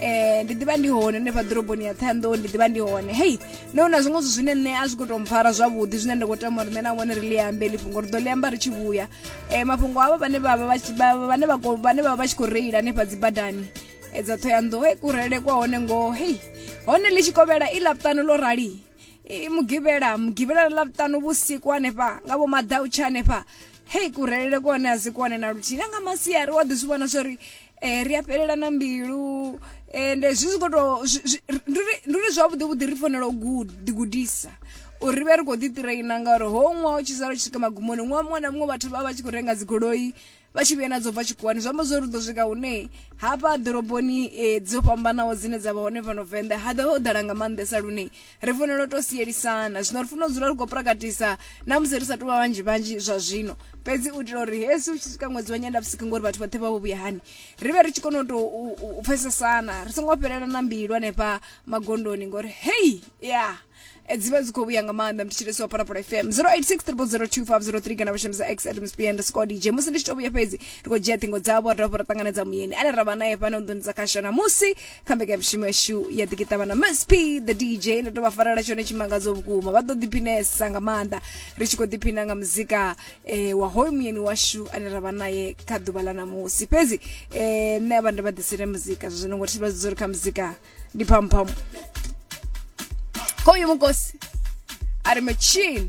eh ndi ḓivha ndi hone hanefha ḓoroboni ya ṱhanḓou ndi ḓivha ndi hone hei no na zwiṅwe zwithu zwine nṋe a zwi khou tou mpfara zwavhuḓi zwine nda khou tama uri nṋe na vhone ri ḽi ambe ḽi fhungo ri ḓo ḽi amba ri tshi vhuya um mafhungo avho vhane vha vha vhane vha vhane vha vha tshi khou reila hanefha dzi badani eh, dza ṱhoyanḓou hei kurele kwa hone ngoho hei hone ḽi tshi kovhela i laṱano ḽo rali mugivhela mugivhela ḽa ṱano vhusiku hanefha nga vho maḓautsha hanefha hei kurelele kone a si kone na luthihi na nga masiari wa ḓi zwi vhona zwori eh ri a fhelelana mbilu ende eh, zwi zwi khou tou ndi uri zwavhuḓi vhuḓi ri fanela u ḓigudisa uri ri vhe ri khou ḓiṱireina ngauri ho ṅwaha u tshi sala u tshi swika magumoni ṅwaha muṅwe na muṅwe vhathu vha vha tshi khou renga dzigoloi vha tshi vhuya na dzo bva tshikhuwani zwi amba zwo ri ḓo swika hune hafha ḓoroboni um dzo fhambanaho dzine dza vha hone fhano venḓa ha ḓo ho ḓala nga maanḓesa lune ri fanela u tou sielisana zwino ri fanela u dzula ri khou prakatisa na musi ri sa tou vha vhanzhi vhanzhi zwa zwino fhedzi u itela uri hesi u tshi swika ṅwedzi wa nyendavhusiku ngori vhathu vhoṱhe vha vho vhuya hani ri vhe ri tshi kona u tou u pfesesana ri songo fhelela na mbilu hanefha magondoni ngori hei ya eh, dzi vha dzi khou vhuya nga maanḓa mthetshelesi wa phalaphala fm 0863 kana vhashumisa x at msp underscore dj musi ndi tshi tou vhuya fhedzi ri khou dzhia ṱhingo dzavho ra dovha ra ṱanganedza muyeni ane ra vha nae fhano nḓuni dza kashana musi kha mbekanyamushumo yashu ya ḓikiṱavha na msp the dj ndo tou vha farela tshone tshimangadzo vhukuma vha ḓo ḓiphinesa nga maanḓa ri tshi khou ḓiphina nga muzika eh, wa hoyu muyeni washu ane ra vha naye kha ḓuvha ḽa ṋamusi fhedzi eh, nṋe avha ndo vha ḓisele muzika zwa zwino ngo thi vha dzori kha muzika ndi phamphamu hoyu mukosi a ri machine